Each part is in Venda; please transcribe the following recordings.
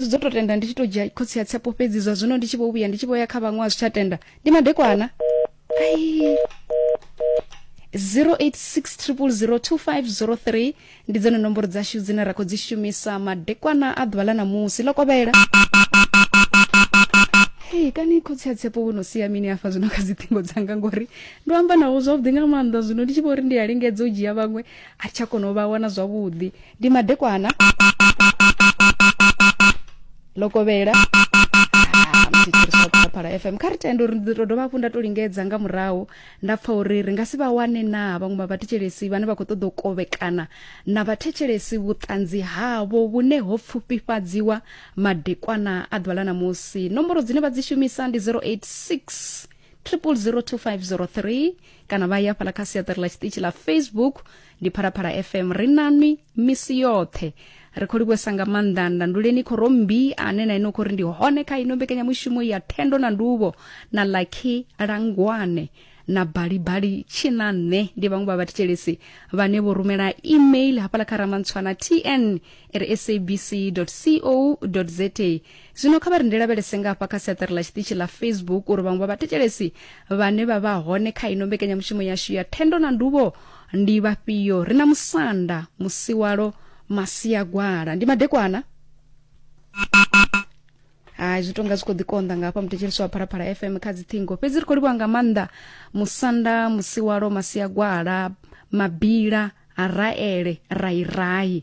dzo to tenda ndi tshi to dzhia khotsi ya tsepo fhedzi zwa zwino ndi tshi vho vhuya ndi tshi vho ya kha vhaṅwe a zwi tsha tenda ndi madekwana ai 0860002503 ndi dzone nomboro dzashu dzine ra khou dzi shumisa madekwana a ḓuvha ḽa ṋamusi ḽo kovhela hei kani khotsi ya tsepo wo no sia mini afha zwino kha dziṱhingo dzanga ngori ndo amba nawo zwavhuḓi nga maanḓa zwino ndi tshi vho ri ndi a lingedza u dzhia vhaṅwe a tsha kona u vha wana zwavhuḓi ndi madekwana lokovhela phala ah, fm kha ri tende uri ndi to dovha hafhu nda to lingedza nga murahu nda pfa uri ri nga si vha wane na vhaṅwe vha vhathetshelesi vhane vha khou ṱoḓa u kovhekana na vhathetshelesi vhuṱanzi havho vhune ho pfufhifhadziwa madekwana a ḓuvha ḽa namusi nomboro dzine vha dzi shumisa ndi 086 triple 02503 kana vha ya fhala kha siaṱari ḽa tshiṱitshi ḽa facebook ndi phalaphala fm ri nanwi misi yoṱhe ri khou livhuwesa nga maanḓa ndanduleni khorombi ane na ine u khou ri ndi hone kha ino mbekanyamushumo ya thendo na nduvho na lucky langwane na balibali tshina nṋe ndi vhaṅwe vha vhathetshelesi vhane vho rumela email hafhala kha ramantshwana tn ri sabc co za zwino kha vha ri ndi lavhelese nga hafha kha siaṱari ḽa tshiṱitshi ḽa facebook uri vhaṅwe vha vhathetshelesi vhane vha vha hone kha ino mbekanyamushumo yashu ya thendo na nduvho ndi vhafhio ri na musanda musiwalo masiagwala ndi madekwana hai zwi tonga zwi khou ḓikonḓa nga hafha muthetshelisi wa phalaphala fm kha dziṱhingo fhedzi ri khou livhuwa nga maanḓa musanda musiwalo masiagwala mabila raele rairai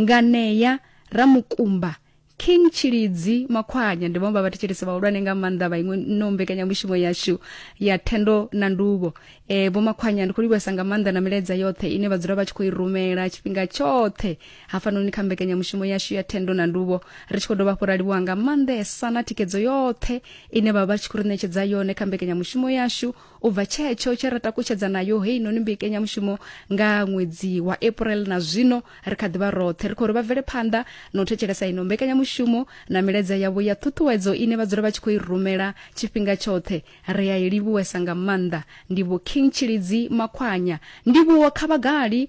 Nganea, Ramukumba, King Tshilidzi, Makhwanya ndi vhaṅwe vha vhathetshelesi vhahulwane nga maanḓa vha iṅwe no mbekanyamushumo yashu ya thendo na nduvho e, vho Makhwanya ndi khou livhuwesa nga maanḓa na milaedza yoṱhe ine vha dzula vha tshi khou i rumela tshifhinga tshoṱhe hafhanoni kha mbekanyamushumo yashu ya thendo na nduvho ri tshi khou dovha hafhu ra livhuwa nga maanḓesa na thikedzo yoṱhe ine vha vha tshi khou ri ṋetshedza yone kha mbekanyamushumo yashu U bva tshetsho tshe ra takutshedza nayo heinoni mbekenyamushumo nga ṅwedzi wa April na zwino, ri kha ḓi vha roṱhe ri khou ri vha bvele phanḓa na u thetshelesa ino mbekanyamushumo na milaedza yavho ya ṱhuṱhuwedzo ine vha dzula vha tshi khou i rumela tshifhinga tshoṱhe. Ri a i livhuwesa nga maanḓa. Ndivho King Tshilidzi Makhwanya. Ndivhuwo kha vhagali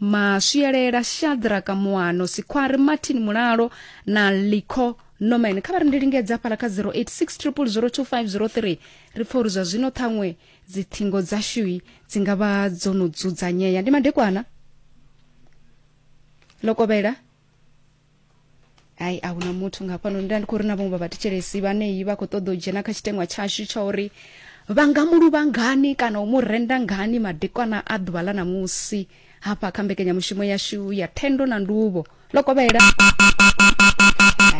maswielela shadraka muano sikhwari martin mulalo na lico norman kha vha ri ndi lingedza fhala kha 0860002503 ri pfa uri zwa zwino ṱhaṅwe dzithingo dzashui dzi nga vha dzo no dzudzanyea ndi madekwana lokovhela hai a huna muthu nga hafhanoni nda ndi khou ri na vhaṅwe vha vhathetshelesi vhaneyi vha khou ṱoḓa u dzhena kha tshiteṅwa tshashu tsha uri vha nga mu luvha ngani kana u mu renda ngani madekwana a ḓuvha ḽa ṋamusi hafha kha mbekanyamushumo yashu ya thendo na nduvho ḽo kovhela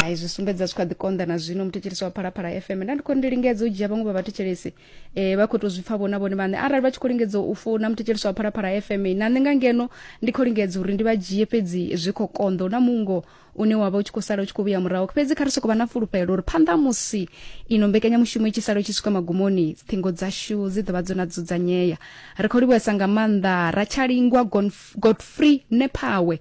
hai zwi sumbedza zwi kha ḓi konḓa na zwino muthetshelesi wa phalaphala fm nda ndi khou ri ndi lingedza u dzhia vhaṅwe vha vhathetshelesi eh vha khou tou zwi pfa vhona vhone vhaṋe arali vha tshi khou lingedza u founa muthetshelisi wa phalaphala fm na nṋe nga ngeno ndi khou lingedza uri ndi vha dzhie fhedzi zwi khou konḓa na mungo une wa vha u tshi khou sala u tshi khou vhuya murahu fhedzi kha ri sokou vha na fulufhelo uri phanḓa musi ino mbekanyamushumo i tshi sala u tshi swika magumoni ṱhingo dzashu dzi ḓo vha dzo na dzudzanyea ri khou livhuesa nga maanḓa ratshalingwa godfrey nephawe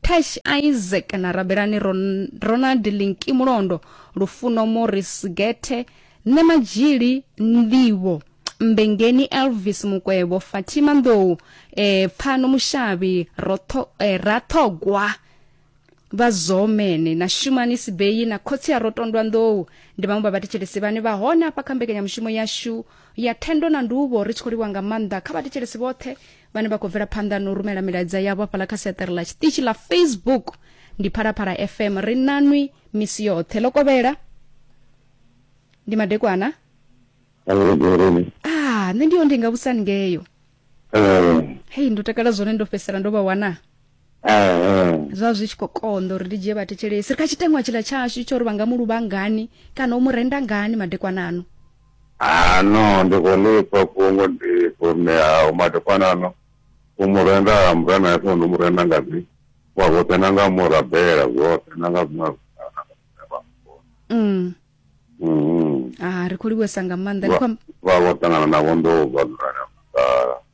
Cash Isaac na Rabelani Ron- Ronald Linki Mulondo, Lufuno Morris Gethe, Nṋe Madzhili Ndivho, Mbengeni Elvis Mukwevho, Fatima Ndou, eh, Pfano Mushavhi, Rotho, eh, Rathogwa vha zomene na shumani sibeyi na khotsi a rotondwa nḓou ndi vhaṅwe vha vhathetshelesi vhane vha hone afha kha mbekanyamushumo yashu ya thendo na nduvho ri tshi khou livha nga maanḓa kha vhathetshelesi vhoṱhe vhane vha khou bvela phanḓa na u rumela milaedza yavho hafhaḽa kha seṱere ḽa tshiṱitshi ḽa facebook ndi phalaphala fm ri nanwi misi yoṱhe ḽo kovhela ndi madekwana ah nṋe ndi yo ndi nga vhusani ngeyo eh. hei ndo takala zwone ndo fhedzisela ndo vha wana zwa zwi tshi khou konḓa uri ndi dzhie vhathetshelesi ri kha tshiteṅwa tshila tshashu tsho uri vha nga mu luvha ngani kana u mu renda ngani madekwana ano ano ndi khou lifha fhungo ndi khou ṋea madekwana ano u mu renda mura na ifho ndi mu renda nga dzi wa zwoṱhe na nga murabela zwoṱhe na nga zwiṅwe mm. mm. ah, ri khou livhuwesa nga maanḓa vha vho ṱangana navho ndo vha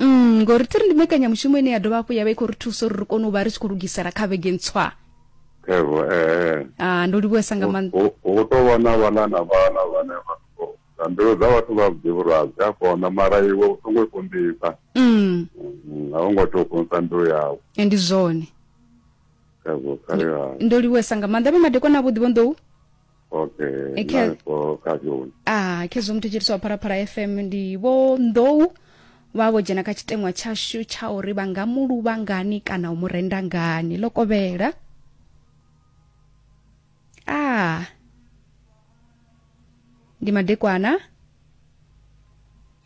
mm, ngori tiri ndi mekanyamushumo ine ya dovha hafhu ya vha i khou ri thusa uri ri kone u vha ri tshi khou lugisela kha vhege ntswa evo ee ah, ndo livhuesa nga maanḓa hu tou vha na vhana na vhana vhane vha na mbilu dza vhathu vha vhuḓi vhurazi a kona mara iwe u songo i kundisa mm. mm, a u ngo tea u kundisa mbilu yawe e, ndi zwone ndo livhuesa nga maanḓa vhe madekwana avhuḓi vho nḓou okay e khe ah khezwo muthu tshiri swa pharapara fm ndi vho nḓou vha vho dzhena kha tshiteṅwa tshashu tsha uri vha nga mu luvha ngani kana u mu renda ngani ḽo kovhela ah ndi madekwana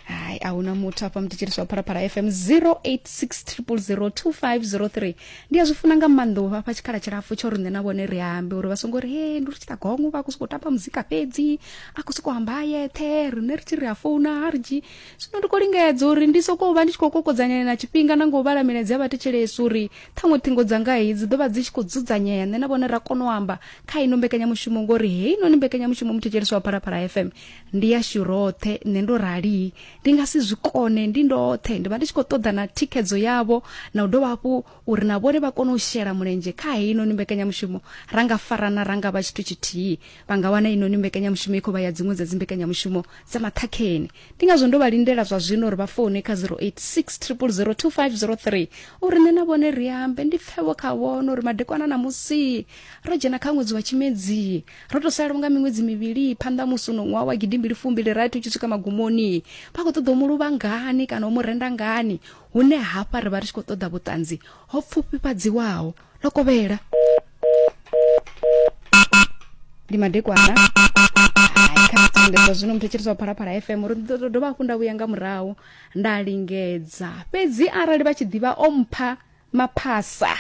hayi ahuna muthu afha mutetsheliswa phalaphala fm 0860002503 ndi a zwi funa nga maanḓa u vhafha tshikhala tshilapfu tsho uri nṋe na vhone ri ambe uri vha songo ri he ndi ri tshi ṱagongo vha khou sokou tamba muzika fhedzi a khou sokou amba a yeṱhe riṋe ri tshi ri a founa ha ri dzhi zwino ndi khou lingedza uri ndi sokou vha ndi tshi khou kokodzanyela na tshifhinga na nga u vhala milaedza ya vhathetshelesi uri ṱhaṅwe ṱhingo dzanga heyi dzi ḓo vha dzi tshi khou dzudzanyea nṋe na vhone ra kona u amba kha ino mbekanyamushumo ngori heinoni mbekanyamushumo muthetshelisi wa phalaphala fm ndi yashu roṱhe nṋe ndo rali ndi nga si zwi kone ndi ndoṱhe ndi vha ndi tshi khou ṱoḓa na thikhedzo yavho na u dovha hafhu uri na vhone vha kone u shela mulenzhe kha heinoni mbekanyamushumo ra nga farana ra nga vha tshithu tshithihi vha nga wana inoni mbekanyamushumo i khou vha ya dziṅwe dza dzimbekanyamushumo dza maṱhakheni ndi ngazwo ndo vha lindela zwa zwino uri vha foune kha 0860002503 uri nṋe na vhone ri ambe ndi pfevho kha vhono uri madekwana na musi ro dzhena kha ṅwedzi wa tshimedzii ro to sala unga miṅwedzi mivhili phanḓa musi uno ṅwaha wa gidimbili fumbili rathi u tshi swika magumoni vha khou ṱoḓa u mu luvha ngani kana u mu renda ngani hune hafha ri vha ri tshi khou ṱoḓa vhuṱanzi ho pfufhifhadziwaho ḽo kovhela ndi madekwana zwino muthu tshiriswa phalaphala fm uri ndo dovha hafhu nda vhuya nga murahu nda lingedza fhedzi arali vha tshi ḓivha o mpha maphasa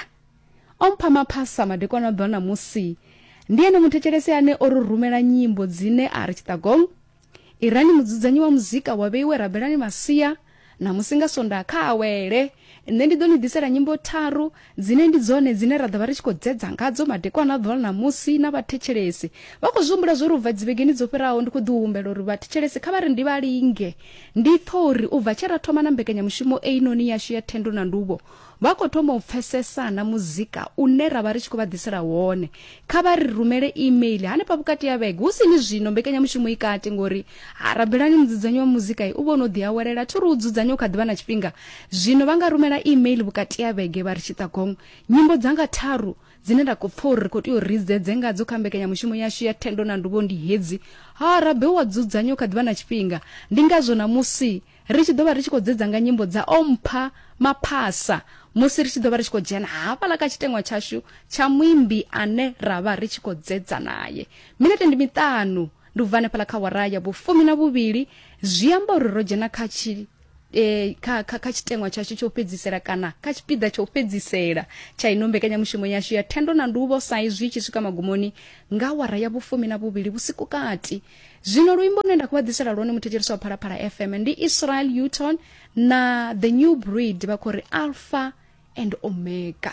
O mpha maphasa madekwana ḓwa na musi. Ndi ene muthetshelesi ane o ri rumela nyimbo dzine a ri Chittagong, Irani mudzudzanyi wa muzika wa vheiwe rabelani masia, na musi nga Sonda kha awele. Nṋe ndi ḓo ni ḓisela nyimbo tharu dzine ndi dzone dzine ra ḓo vha ri tshi khou dzedza ngadzo madekwana ḓwa na musi na vhathetshelesi. Vha khou zwi humbula zwo ri u bva dzivhegeni dzo fhiraho ndi khou ḓi humbela uri vhathetshelesi kha vha ri ndi vha linge. Ndi pfa uri u bva tshe ra thoma na mbekanyamushumo einoni yashu ya Thendo na Nduvho, Vha khou thoma u pfesesa na muzika une ra vha ri tshi khou vha ḓisela wone. Kha vha ri rumele e-mail hanefha vhukati ha vhege, hu si ni zwino mbekanyamushumo i kati ngori ha rabelani mudzudzanyi wa muzika u vha o no ḓi awelela. Thi ri u dzudzanya u kha ḓi vha na tshifhinga. Zwino vha nga rumela e-mail vhukati ha vhege vha ri, Tshitagong, nyimbo dzanga tharu dzine nda khou pfa uri ri khou tea uri ri dzedze ngadzo kha mbekanyamushumo yashu ya Thendo na Nduvho ndi hedzi. Ha rabelwa dzudzanya u kha ḓi vha na tshifhinga. Ndi ngazwo ṋamusi Ri tshi ḓo vha ri tshi khou dzedza nga nyimbo dza O Mpha Maphasa musi ri tshi ḓo vha ri tshi khou dzhena hafhaḽa kha tshiteṅwa tshashu tsha muimbi ane ra vha ri tshi khou dzedza naye. Minete ndi miṱanu ndi u bva hanefhaḽa kha wara ya vhufumi na vhuvhili zwi amba uri ro dzhena kha tshi eh, kha, kha, kha tshiteṅwa tshashu tsha u fhedzisela kana kha tshipiḓa tsha u fhedzisela tsha ino mbekanyamushumo yashu ya thendo na nduvho sa izwi tshi swika magumoni nga wara ya vhufumi na vhuvhili vhusiku kati zwino luimbo lune nda khou vha ḓisela lwone muthetshelesi wa phalaphala fm ndi israel uton na the new breed vha khou ri alpha and omega